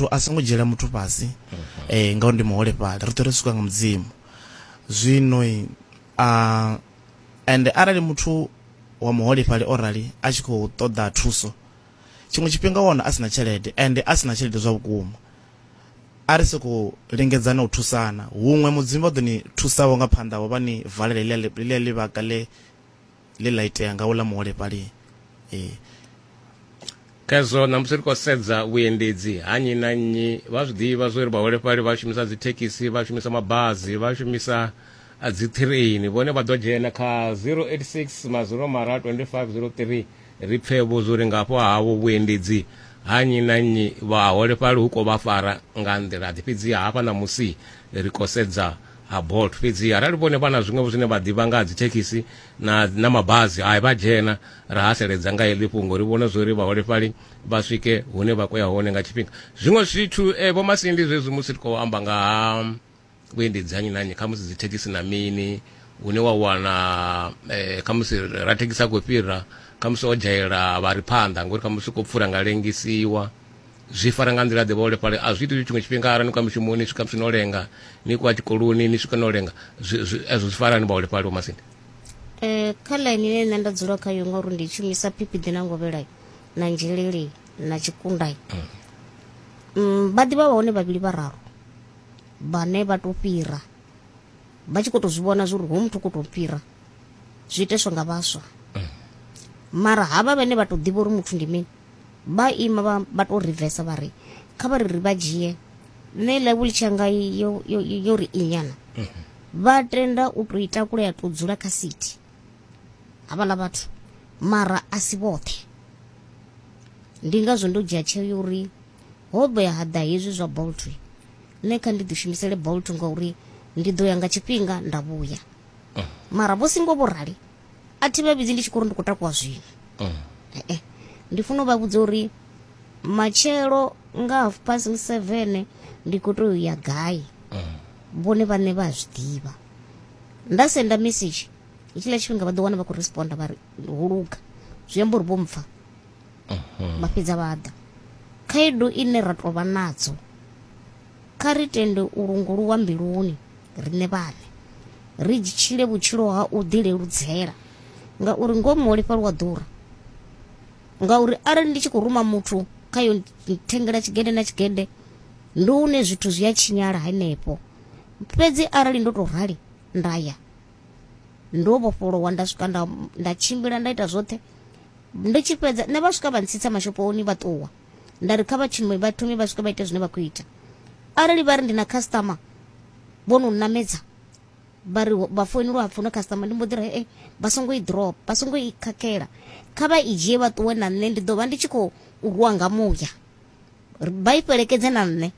muthu a songo dzhiela muthu fhasi eh ngauri ndi muholefhali ri ṱwe ri swika nga mudzimu zwino a and arali muthu wa muholefhali o rali a tshi khou ṱoḓa thuso tshiṅwe tshifhinga wana a sina tshelede and a sina tshelede zwa vhukuma a ri soko lingedzana u thusana huṅwe mudzimu vha ḓo ni thusaho nga phanḓa vho vha ni valela ḽi ḽivhaka ḽe ḽe ḽa itea nga uḽa muholefhali ee Khezwo na musi ri khou sedza vhuendedzi ha nnyi na nnyi vha zwi ḓivha zwo ri vhaholefhali vha shumisa dzithekhisi vha shumisa mabazi vha shumisa ah, dziṱhireini vhone vha ḓo dzhena kha 086 maziro mara 2503 ri pfe vho zwo ri ngafho havho vhuendedzi ha nnyi na nnyi vhaholefhali hu khou vha fara nga nḓila ḓi fhedzi hafha ṋamusi ri khou sedza ha bolt fhedzi arali vhone vha na zwiṅwevho zwine vha ḓivha nga ha dzithekhisi na, na mabazi hai vha dzhena ra haseledza nga heḽi fhungo ri vhone zwori vhaholefhali vha swike hune vha khoya hone nga tshifhinga zwiṅwe zwithu eh, vho masindi zwezwi musi ri khou amba nga ha vhuendedzi hanyi nanyi kha musi dzithekhisi na mini une wa wana eh, kha musi ra thekhisi a khou fhira kha musi o dzhaela vha ri phanḓa ngori kha musi u khou pfura nga lengisiwa zwi fara nga nḓila ḓe vhaholefhali a zwi iti tshiṅwe tshifhinga arali ni khou ya mushumoni swika musi no lenga ni khou ya tshikoloni ni swika no lenga ezwo zwi farani vhaholefhali vho masindi um kha ḽaini ine nṋe nda dzula khayo ngauri ndi shumisa phipiḓi na ngovhelai na nzheleli na tshikundai mm. Mm, vha ḓivha vha hone vhavhili vhararu vhane vha tou fhira vha tshi khou tou zwi vhona zwa uri ho muthu khou tou fhira zwi iteswa nga vhaswa mm. mara havha vhane vha tou ḓivha uri muthu ndi mini vha ima vha, vha tou rivesa vha ri kha vha ri ri vha dzhie nṋe level tshanga yo, yo, yo ri inyana vha tenda u tou itakula ya tou dzula kha city havhaḽa vhathu mara a si vhoṱhe ndi ngazwo ndo dzhia tsheo ya uri ho vhoya ha ḓa hezwi zwa bolt nṋe kha ndi ḓishumisele bolt ngauri ndi ḓo ya nga tshifhinga nda vhuya mara vho singo vho rali a thi vha vhidzi ndi tshi khou ri ndi khou takuwa zwino mm. eh, eh. ndi funa u vha vhudza uri matshelo nga half past seven ndi khou tou ya gai mm. vhone vhaṋe vha zwi ḓivha nda senda message itshiḽa tshifhinga vha ḓo wana vha khou responda vha ri ho luga zwi amba uri vho mpfa mhm. vha fhedza vha ḓa khaedu ine ra tou vha nadzo kha ri tende u lunguluwa mbiluni riṋe vhaṋe, ri tshile vhutshilo ha u ḓi leludzela ngauri ngomu ho lifheliwa ḓura. Ngauri arali ndi tshi khou ruma muthu kha yo thengela tshigede na tshigede ndi hune zwithu zwi a tshinyala henefho. Fhedzi arali ndo to rali nda ya ndo vhofholowa nda swika nda nda tshimbila nda ita zwoṱhe ndi tshi fhedza nṋe vha swika vha ntsitsa mashophoni vha ṱuwa. nda ri kha vha tshinume vha thome vha swike vha ite zwine vha khou ita arali vha ri ndi na customer vho no nnamedza vha ri vha foinelwa hapfi no customer ndi mbo ḓi ri e vha songo i drop vha songo i khakhela kha vha i dzhie vha ṱuwe na nṋe ndi ḓo vha ndi tshi khou rwa nga muya vha i fhelekedze na nṋe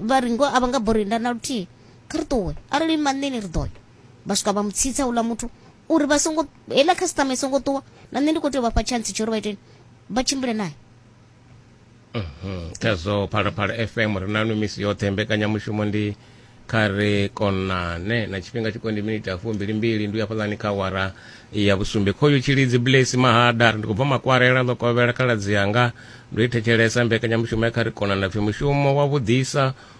vha ri ngo a vha nga bori nda na luthihi kha ri ṱuwe arali maṋeni ri ḓo ya vha swika vha mu tsitsa uḽa muthu uri vha songo heiḽa customer i songo ṱuwa na nṋe ndi khou tea u vha fha chance tsho uri vha iteni vha tshimbile naye mhm. khazwo phalaphala fm ri nanu misi yoṱhe mbekanyamushumo ndi kha ri konane na tshifhinga tshiko ndi miniti ya fumbilimbili ndi u ya fhaḽani kha wara ya vhusumbe khoyo tshilidzi blesi mahada ndi khou bva makwarela ḽo kovhela khaladzi yanga ndo i thetshelesa mbekanyamushumo ya kha ri konane pfi mushumo wa vhuḓisa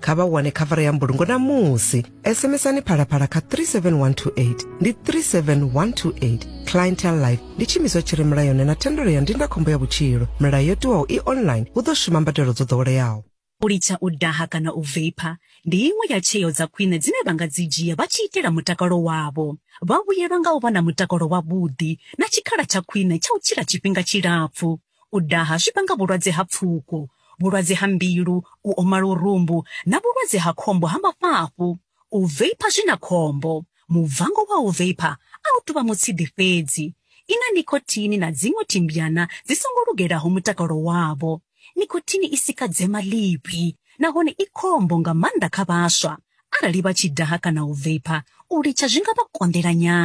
kha vha wane khavara ya mbulungo na musi sms-ani phalaphala kha 37128 ndi 37128 clientel life ndi tshimiswa tshi re mulayoni na thendelo ya ndindakhombo ya vhutshilo milayo yo tiwaho i online hu ḓo shuma mbadelo dzo ḓoweleaho u litsha u daha kana u veipa ndi iṅwe ya tsheo dza khwine dzine vha nga dzi dzhia vha tshi itela mutakalo wavho vha vhuyelwa nga u vha na mutakalo wavhuḓi na tshikhala tsha khwine tsha u tshila tshifhinga tshilapfu U daha zwi vhanga vhulwadze ha pfuko, vhulwadze ha mbilu, u oma lurumbu na vhulwadze ha khombo ha mafhafhu. U veipha zwi na khombo. Mubvango wa u veipha a u tou vha mutshidi fhedzi. I na nikhothini na dziṅwe thimbyana dzi songo lugelaho mutakalo wavho. Nikhothini i sika dzema ḽivhi nahone i khombo nga maanḓa kha vhaswa. Arali vha tshi daha kana u veipha, u litsha zwi nga vha konḓela nyana.